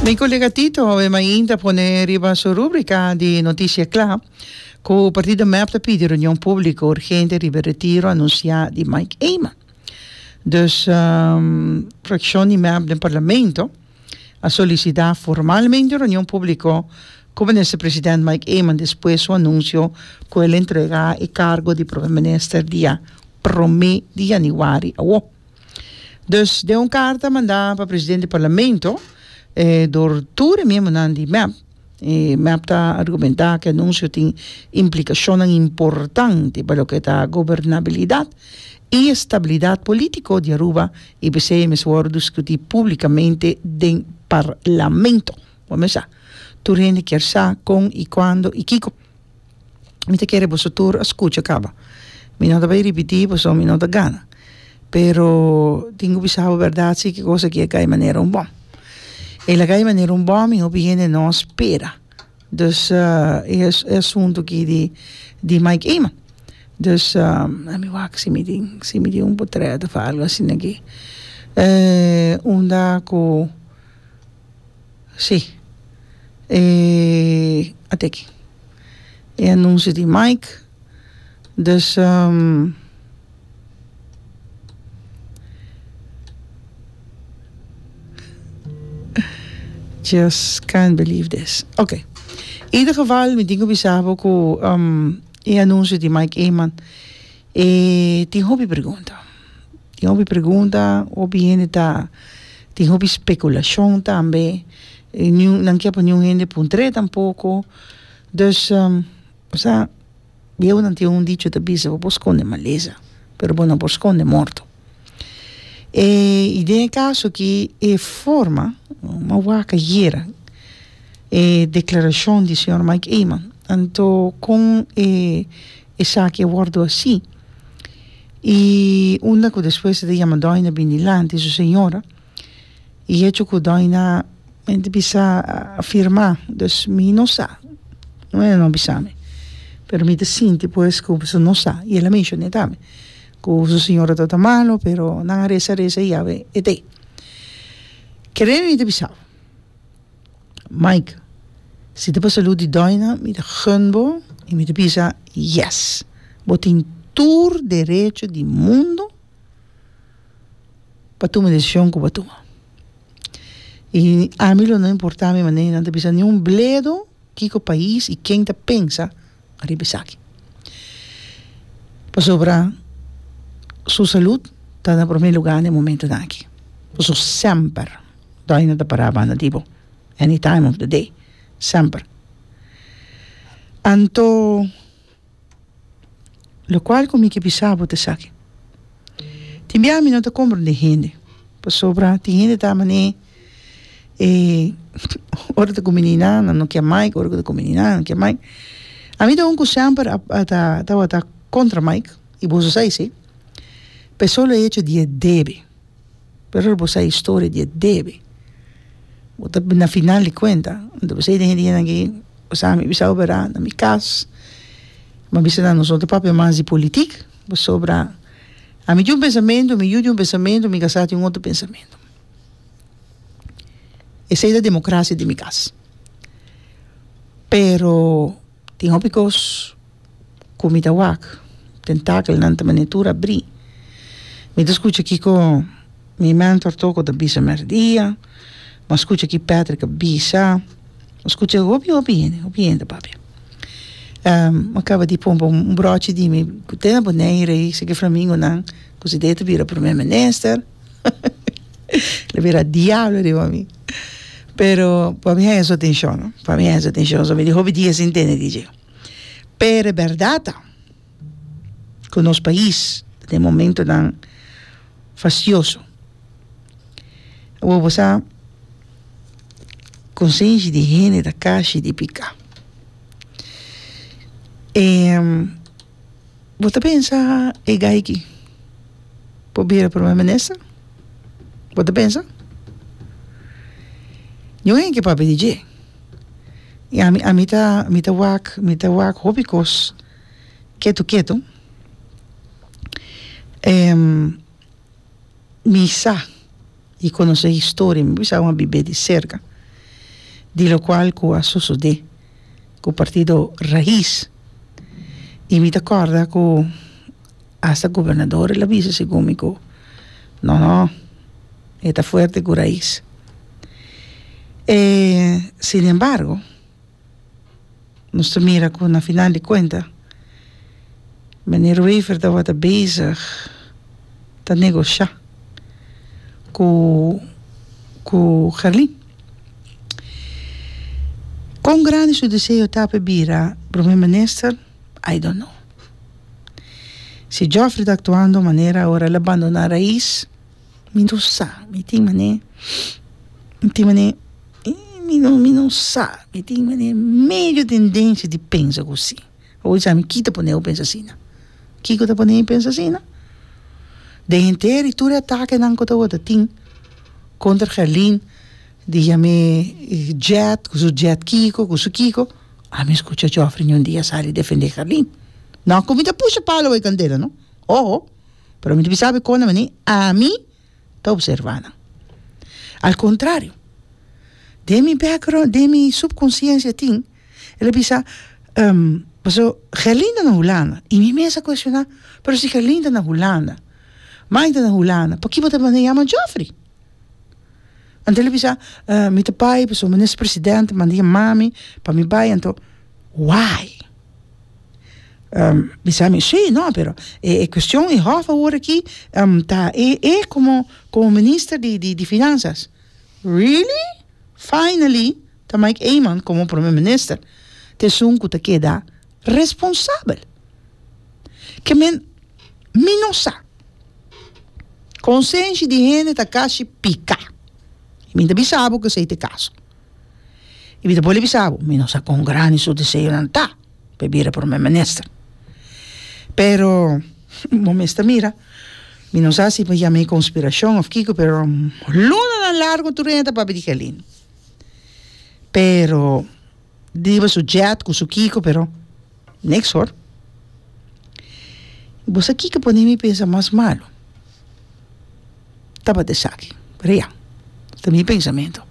Mi colega Tito awe mainta a pone riba su rúbrica di noticia cla cu partido mep ta pidi reunion público urgente riba e retiro anuncia di Mike Eman. Dus fraccion di mep den parlamento a solicita formalmente un reunion público cu minister president Mike Eman despues su anuncio cu el a entrega e cargo di prome minister dia prome di januari awo. Dus den un carta manda pa president di parlamento eh door tur e miembonan di mep y mep ta argumenta cu e anuncio tin implicacionnan importante pa loke ta gobernabilidad y estabilidad politico di Aruba y p'esey e mester worde discuti publicamente den parlamento. Bo mester sa tur hende kier sa con y cuando y kico. mi ta kere boso tur a skucha kaba mi no ta bai ripití pasobra mi no ta gana pero tin ku bisa bo bèrdat si ki kosa ki a kai manera un bòm e laga i manera un bòm i hopi hende no spera dus e e asuntu ki di di Mike Eman dus lami wak si mi tin si mi tin un potrèt òf algu asina aki unda ku Sí. E ate aki e anuncio di Mike. Dus just can't believe this. Ok. Ieder geval mi tin ku bisa bo ku e anuncio di Mike Eman e tin hopi pregunta. tin hopi pregunta hopi hende ta tin hopi speculashon tambe nan kier pa niun hende puntre tampoko dus osea bieunan tin un dicho ta bisa bo por skonde malesa pero bo no por skonde morto y den e caso aki e forma ma wak ayera e declaracion di señor Mike Eman tanto con e Esaki a wòrdu así. I unda ku despues e ta yama dòina bini dilanti di su señora, i hecho ku dòina mente bisa a firmá, dus mi no sa, no e no bisa mi, pero mi ta sinti pues ku su no sa, i el a menshoné tambe ku su señora tabata malu, pero nan a resa, resa i yawe e t'ei. Kere mi ta bisau. Mike, si ta pa salú di dòina mi ta gun bo i mi ta bisa yes. Bo tin tur derecho di mundu pa tuma e decision ku bo a tuma. I ami lo no importa mi manera nan ta bisa ni un bledo kiko pais i ken ta pensa. riba esaki. Pasobra su salud ta na prome luga den e momentonan aki. Por eso semper dòi no ta para banda di bo, any time of the day, semper. Anto lokual ku mi ke bisa bo ta esaki. Tin biaha mi no ta komprende hende pasobra tin hende ta man'e e ora ta kuminí nan nan no kier maik ora ku ta kuminí nan nan kier maik ami ta un ku semper a a ta tabata kontra maik i boso sa isei pa e solo hecho di e debe pero ora bo sa historia di e debe bo ta na final di kuenta bo ta bisa e hende nan ke o sa mi bisa operá na mi kas mi a bisa nan nosotros papia mas di politik Pasobra ami tin un pensamentu, mi yu tin un pensamentu, mi kasá tin otro pensamentu. Esei ta democracia den mi kas. Pero tin hopi kos ku mi ta wak, tentakelnan ta manera tur abrí. Mi ta skucha kiko Mi mentor toko ta bisa mèrdia, m'a skucha ki Patrick a bisa, m'a skucha hopi hopi hende, hopi hende papia. m'a kaba di pon pa un brochi di mi ku te na Boneiru ei, seki flamingonan ku si de ta bira Prome Minister, lo bira diablo riba mi, pero pa mi haya su atenshon, pa mi haya su atenshon, so mi di hopi dia sin tende di dje, pero e bèrdat ta. ku nos pais ta den momentonan fastioso. Awor bo sa konsenshi di hende ta kashi di piká. E bo ta pensa e gayki por bira Prome Minister? Bo ta pensa? Yon hende ke papia di dje i ami ami ta wak mi ta wak hopi kos Ketu ketu em mi sa y conoce historia mi bisa awan bibe di cerca di lo cual cu a sosode cu partido Raiz y mi ta corda cu hasta gobernadores la bisa segun mi cu no no e ta fuerte cu Raiz eh sin embargo. nos ta mira ku na final di kuenta Meneer Wever tabata bezig ta negoshá ku ku Gerlin. Kon grandi su deseo ta pa e bira Prome Minister? I don't know. Si Jofrey ta aktuando manera ora el a bandona Rais. Mi no sa, mi tin manera, mi tin manera, mi no, mi no sa, mi tin manera medio tendencia di pensa cu si. Awo mi sa mi ki ta poneu pensa asina? Kico ta ponei pensa asina? Den henter y tur e atakenan cu ta worde tin contra Herlin, di yame Jet, cu su Jet kico, cu su kico, a mi scucha Geoffrey un dia sali defende Herlin. No cu mi ta pusha palo awor e candela, no, ojo. pero mi ta bisa awe kon a mini ami ta observa nan al contrario den mi background den mi subconsciencia tin el a bisa pasobra gerlinda na hulanda y mi mes a cuestiona pero si gerlinda na hulanda maite na hulanda paki bo ta manda yama jofrey anto el a bisa mi ta bai pasobra minister presidente manda yamami pa mi bai anto why bisa mi, sí, no, pero e cuestion e hof awor aki ta e, e como, como minister di, di, di finanzas, really? Finally ta Mike Eman como prome minister, ta esun cu ta keda responsabel, ke men, mi no sa, consenshi di hende ta cashi pica. y mi ta bisa bo cu esey ta e caso. Y mi ta bole bisa bo, mi no sa cuan grandi su deseonan ta, pa e bira Prome Minister. Pero, bo mes ta mira, mi no sa si bo yam'e conspiracion of kico, pero lunanan largo tur e hende ta papia di Gelin. Pero. driba su jet cu su kico pero niks hoor. Y bo sa kico pone mi pensa mas malo? Tabata esaki real ta mi pensamento.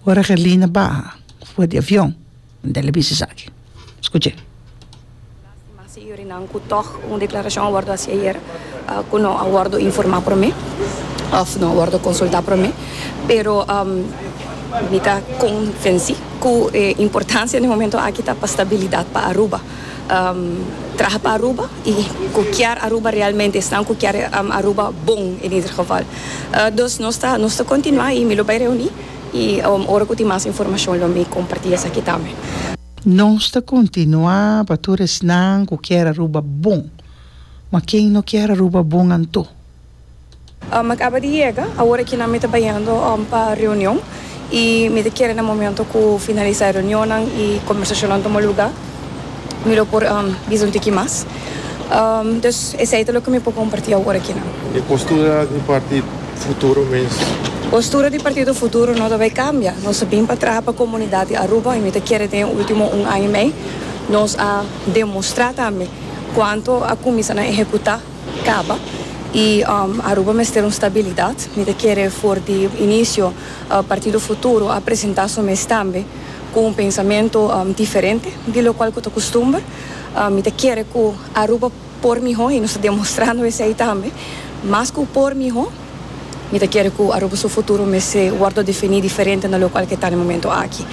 Ora Gerlina baha for di avion m'a dal a bisa esaki. Scuche. Lastima señorinan cu toch un declaracion a wordo haci ayer cu no a wordo informa prome of no a wordo consulta prome. Pero mi ta convenci cu e importancia den e momento aki ta pa stabilidad pa Aruba. Traha pa Aruba y cu kier Aruba realmente esnan cu kier Aruba bon en ieder geval. Dus nos ta nos ta continua y mi lo bay reuni y ora cu tin mas informacion lo mi comparti esaki tambe. Nos ta kontinuá pa tur esnan ku kier a ruba bon, ma ken no kier a ruba bon anto? Mi a kaba di yega, awor akinan mi ta bajando pa reunion i mi ta kere na momento ku finalisá e reunionnan i kombersashonnan tuma lugá mi lo por bisa un tiki mas. Dus esei ta loke mi por kompartí awor akinan. E postura di partido. Futuro mes. Postura di Partido Futuro no ta bay cambia. Nos a bin pa traha pa comunidad di Aruba y mi ta kere den e ultimo un aña y mey nos a demostra tambe cuanto a cuminsa na ehecuta caba y Aruba mester un stabilidad. Mi ta kere for di inicio Partido Futuro a presenta su mes tambe cu un pensamento diferente di locual cu ta costumber. Mi ta kere cu Aruba. Por mihó, i nos ta demostrando esei tambe. Mas ku por mihó, mi ta kere ku Aruba su futuro mester wòrdu definí diferente na lokal ku e ta den momentu aki.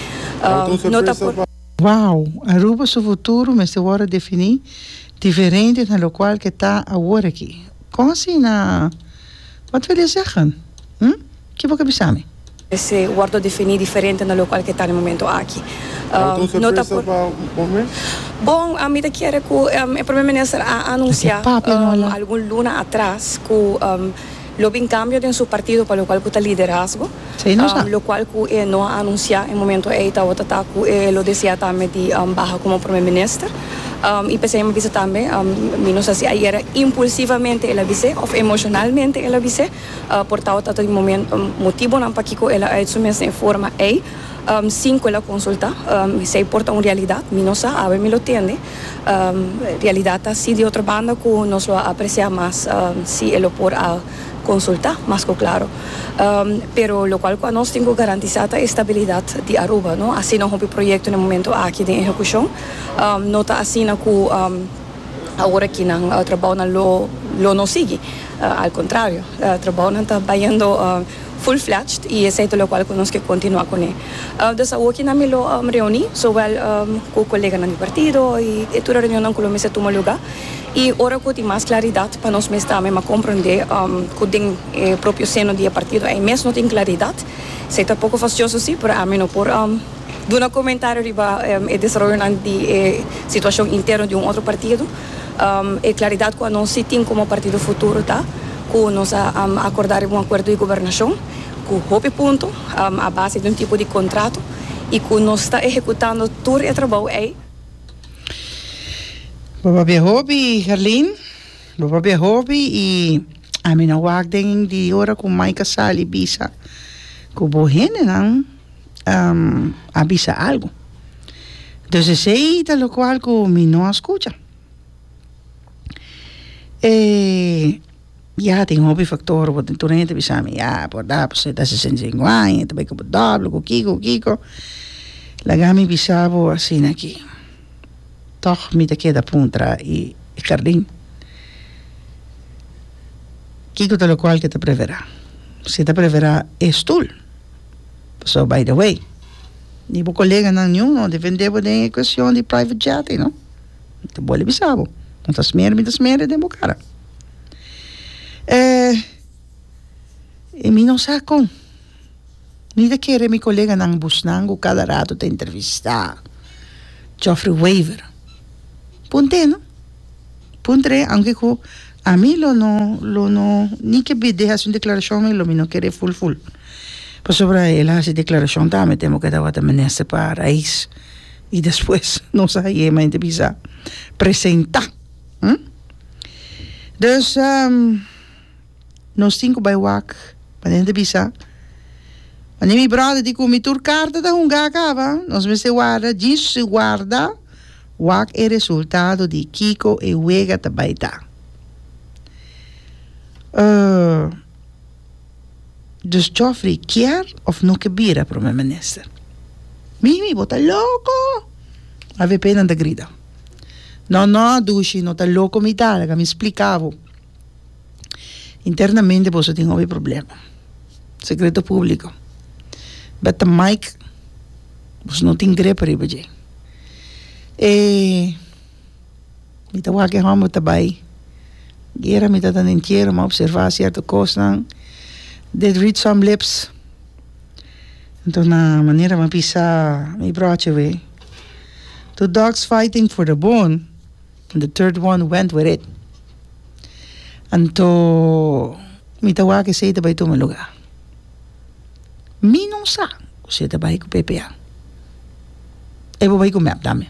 No ta por. Wow! Aruba su futuro mester wòrdu definí diferente na lokal ku e ta awor aki. Kon asina? Wat wil e zeggen? Hm? Ke bo ta bisa mi? Mester wordo definí diferente na locual cu e ta na e momento aki. No ta por. Bon, mi ta kere cu e Prome Minister a anuncia algun luna atras cu lo bin cambio den su partido pa locual cu ta liderazgo, locual cu e no a anuncia e momento ey tabata ta cu e lo desea tambe di baha como Prome Minister. Y p'esey mi a bisa tambe, mi no sa si ayer impulsivamente el a bis'e of emocionalmente el a bis'e. Por tao ta tin motibonan pakiko el a ait su mes den e forma ei, sin ku el a konsultá. Si ei por ta un realidat, mi no sa, awe mi lo tende. Realidat ta asi. Di otro banda ku nos lo a apresiá mas si e lo por a konsultá mas ku klaro. Pero lokual ku anos tin ku garantisá ta e stabilidat di Aruba, no? Asina hopi proyekto den e momentu aki den ehekushon. No ta asina ku Awor aki nan trabounan lo lo no sigui, al contrario, trabounan ta bayendo full fledged y esey ta locual cu nos ke continua cune. Des awor aki nan mi lo reuni zowel cu coleganan di partido y e tur e reunionnan cu lo mester tuma luga y ora cu tin mas claridad pa nos mes tambe m'a comprende cu den e propio seno di e partido ey mes no tin claridad, esey ta poco fastioso si, pero ami no por Duna comentario riba e desaroyonan di e situacion interno di un otro partido, e claridad cu anos si tin como partido futuro ta cu nos a acorda riba un acuerdo di gobernacion cu hopi punto a base di un tipo di contrato y cu nos ta ehecutando tur e trabao ey. Bo papia hopi Herlin, bo papia hopi y ami no wak den di ora cu Mike a sali bisa cu bo hendenan a bisa algu. Dus esei ta lokual ku mi no a skucha. E ya tin hopi faktor bo tin tur hende ta bisa mi ya por da bo seta sesenta i sinku aña ta bai ku bo dòbele ku kiko ku kiko laga mi bisa bo asina ki tòg mi ta keda puntra i hèrdin kiko ta lokual ke ta preferá si ta preferá e stul. Pasobra by the way di bo koleganan niun no defende bo den e cuestion di private jet ei no ta bole bisa bo no ta smer mi ta smer den bo cara eh y mi no sa con mi ta kere mi koleganan busnan cu cada rato ta entrevista Geoffrey Wever punto e no punto e aunke cu Ami lo no lo no ni ke bid'é hasi un deklarashon mi lo mi no kere ful ful pasobra el a hasi deklarashon ta ami temo ke ta wata menester pa rais i despues no sa heye me ta bisa presenta dus nos tin ku bai wak pasobra mi ta bisa wanneer mi bròder di ku mi tur karta ta hunga akaba nos mester warda djis guarda. Wak e resultado di kiko e wega ta bai ta. Dus Geoffrey kier of no ke bira Prome Minister? Mimi, bo ta loko! Avp nan ta grita. No, no, Dushi, no ta loko mi ta, laga mi splika bo. Internamente boso tin hopi problema secreto publico beta mike boso no tin grepa riba dje e mita wak e homber ta bay guera mi ta den entiero mi a observa cierto cosnan they read some lips anto na manera mi a bisa mi broche wee two dogs fighting for the bone And the third one went with it. Anto mi ta wak esei ta bai tuma luga. Mi no sa cu si e ta bai cu ppa. E por bai cu mep tambe.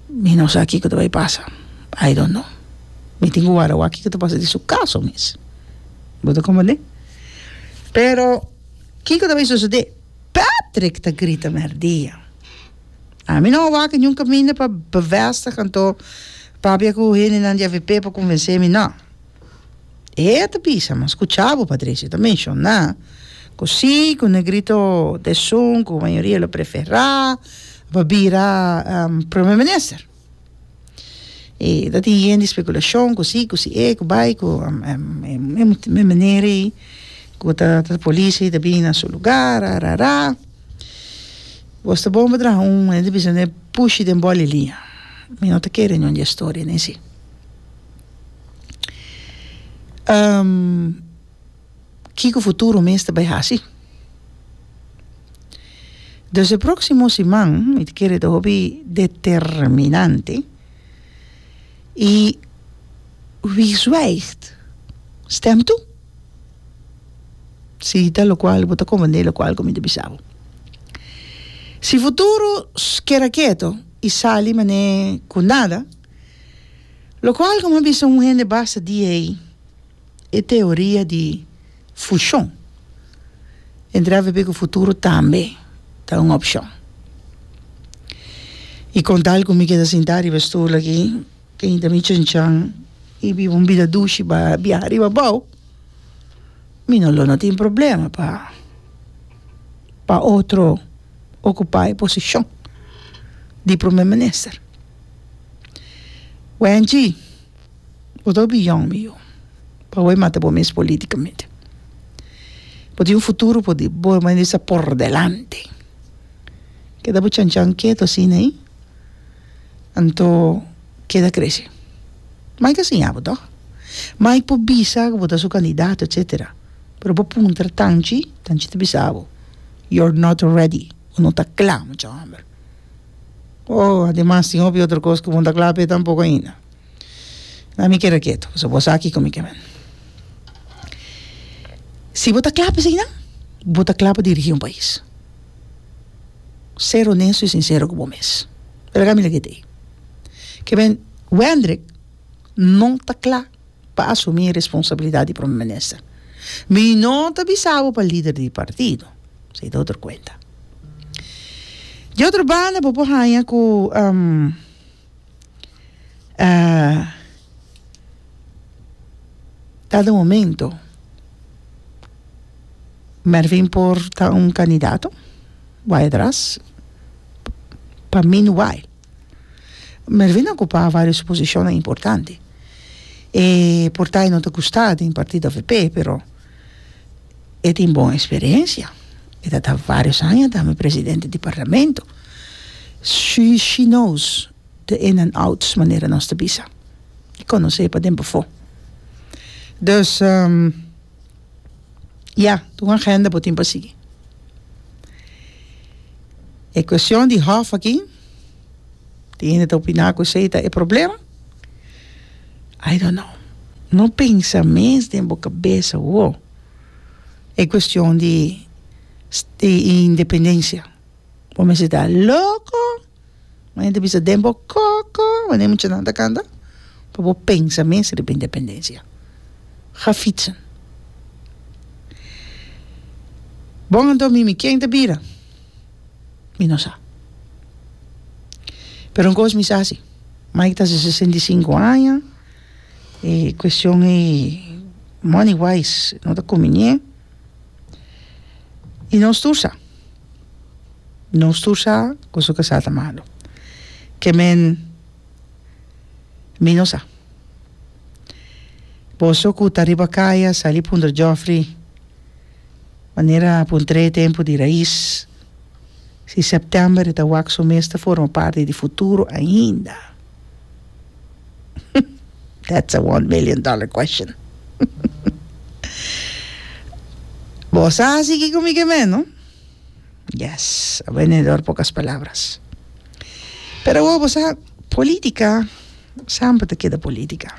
Mi no sa kico ta bai pasa. I don't know. Mi tin cu wara wak kico ta pasa den su caso mes. Bo ta comprende? Pero kico ta bai sucede? Patrick ta grita merdia. Ami no a wak niun kaminda pa bevestig anto papia ku hendenan di avp por konvensé mi, nò. E a ta bisa, mi a skuchá bo, Patricia, e ta menshoná ku sí, ku Negrito t'esun ku mayoria lo preferá pa bira Prome Minister. E ta tin yen di spekulashon ku si ku si e ku bai ku e meneer ei ku ta polisi ei ta bini na su lugar arara wos ta bon pa traha un mane ta bisa n'e pushi den bòl e liña mi no ta kere ningún di e storia nesei. Kiko futuro mes ta bai hasi. Dus e proksimo siman mi ta kere ta hopi determinante i wie zwijgt stemt toe. Si ta lokual bo ta komprende lokual ku mi ta bisa bo. Si futuro keda keto i sali mane ku nada lokual ku mi ta bisa un hende basta di'ei. e teoria di fushon. E dra papia ku futuro tambe ta un opshon. I kon tal ku mi keda sintá riba e stul aki, teinta mi chanchan i biba un bida dushi pa biaha riba abou, mi no lo no tin problema pa pa otro okupá e posishon di Prome Minister. Wenchi, Bo ta opiñon mi yu. Pawey mata bo mes politicamente. Bo tin un futuro por di bo mester di sa por delante. Keda bo chan chan keto asina ey anto keda crece. Mike a siña bo toch. Mike por bisa cu bo ta su candidato etcetera pero bo puntra Tanchi, Tanchi ta bisa bo your not ready bo no ta cla mucha homber. Oh ademas tin hopi otro cos cu bo no ta cla p'e tampoco ainda. Mira mi keda ketu pasobra bo sa kiko mi ke men. Si bo ta kla pa asina bo ta kla pa dirigi un pais ser honesto y sincero ku bo mes pero aka mi la kiti ke men Wendrick no ta kla pa asumi responsabilidad di Prome Minister mi no ta bisa bo pa lider di partido se ta otro kuenta di otro banda bo por haña ku Kada momento Mervin por ta un candidato wai atras pa min wai Mervin a ocupa varios posicionnan importante e por ta y no ta gusta den partido avp pero E tin bon experiencia. E ta ta varios aña dame presidente di Parlamento. She she knows the in and outs manera nos ta bisa. E conoce paden befo. Dus ya ta un agenda bo tin pa sigui. E cuestion di hof aki. Tin hende ta opiná ku esei ta e problema. I don't know. No pensa mes den bo kabes awo e kuestion di independensia. Bo mester ta loko, bo mester bisa den bo koko wende e muchanan ta kanta pa bo pensa mes riba independensia. Ga fitsen. Bon anto mi mi ken ta bira? mi no sa. Pero un kos mi sa si, Mike ta sesenta i sinku aña, e kuestion di money wise no ta kuminé, i nos tur sa, nos tur sa kusu ku sa ta malu, ke men mi no sa, boso ku ta riba kaya sali puntra jofri Manera p'un trae tempu di rais. Si september e ta wak su mes ta forma parti di futuro ainda. That's a one million dollar question. Bo sa si kiko mi ke meno? Yes, a venedor pocas palabras. Pero awor bo sa, politica, semper ta keda politica.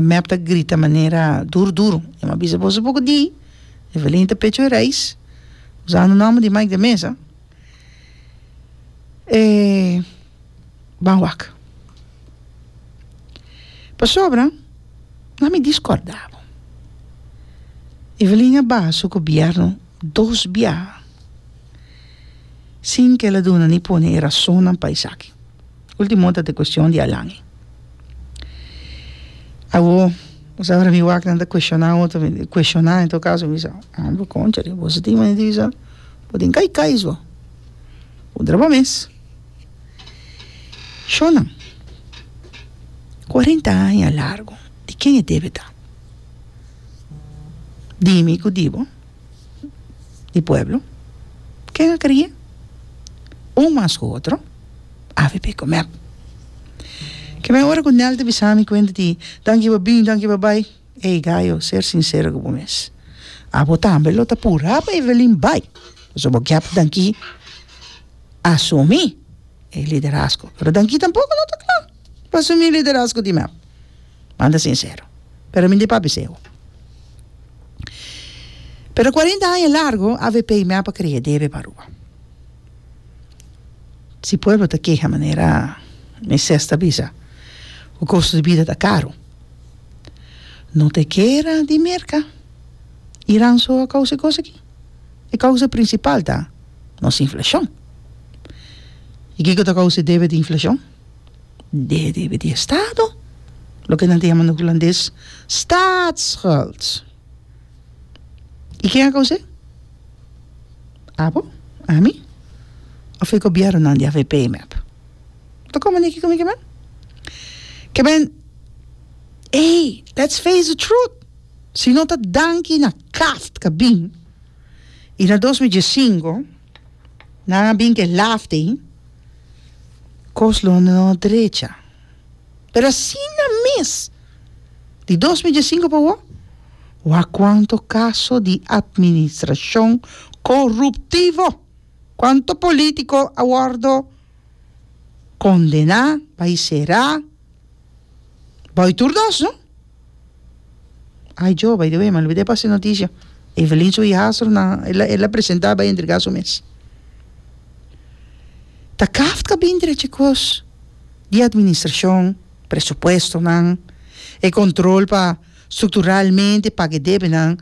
Mep ta grita manera duru duru, Io m'ha bisa boso poco di Evelyn ta pecho e reis, usando nomber di Mike de Meza, e ban wak. Pasobra na mi discorda bo. Evelyn a baha su gobierno dos bia sin cu el a duna ni pone e razonnan pa esaki. Ultimo ta t'e cuestion di Alan. Awor bo sa para mi wak nan ta cuestiona otro mi di cuestiona en todo caso mi bisa hombre conchale bo sitin me di bisa bo tin kai kai so puntra bo mes shonnan cuarenta aña largo di ken e debe ta? Dime y cu di bo. di pueblo ken a kere un mas ku otro avp comer kimen ora ku nel ta bisa mi kuent di danki pa bin danki pa bai ey gayo ser sincero ku bo mes abo tambe lo ta pura pa evelin bai pasobra bo kier danki asumi e liderazgo pero danki tampoco lo ta cla pa asumi liderazgo di mep Manda sincero. Pero mi di pa biseo. Pero cuarenta aña largo avp mi apa crea debe pa Aruba. Si pueblo ta keha manera Moises ta bisa cu costo di bida ta caro. No ta e guera di merca. Iran so a causa e cos aki. E causa principal ta nos inflacion. Y kico ta causa e debe di inflacion? de riba di e stado, loke nan ta yama na hulandes staatsschuld. I ken a kouse? Abo? Ami? Of e gobièrnunan di avp mep? Ta komo niki ku mi ke mep? Ke men, ei, let's face the truth, si no ta danki na Kaft Kabin i na dos mi diesinko, Nan a bin ke laf den kos lo no drecha. Pero asina mes, di dos mil diesinku pa wou, wak kuanto kaso di atministrashon koruptivo, kuanto polítiko a wòrdu kondená pa i será Boy tur dos no ay yo bay de way malobida e pasa e noticia Evelyn su hijastro nan ela presenta bay entrega su mes ta kaft ka bini dere chicos y administracion presupuesto nan e control pa structuralmente paga e debe nan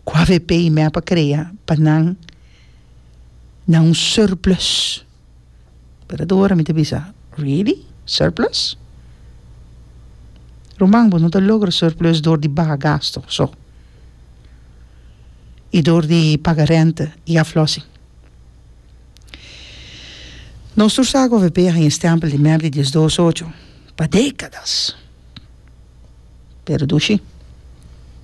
cu avp y mep a crea pa nan na un surplus. Pero ta ora mi ta bisa, Really? Surplus? Ruman, bo no ta logra surplus dor di baha gastu so i dor di paga rente i aflossing. Nos tur sa ku avp a haña stempel di mer di diesdos ocho pa dekadas, pero dushi.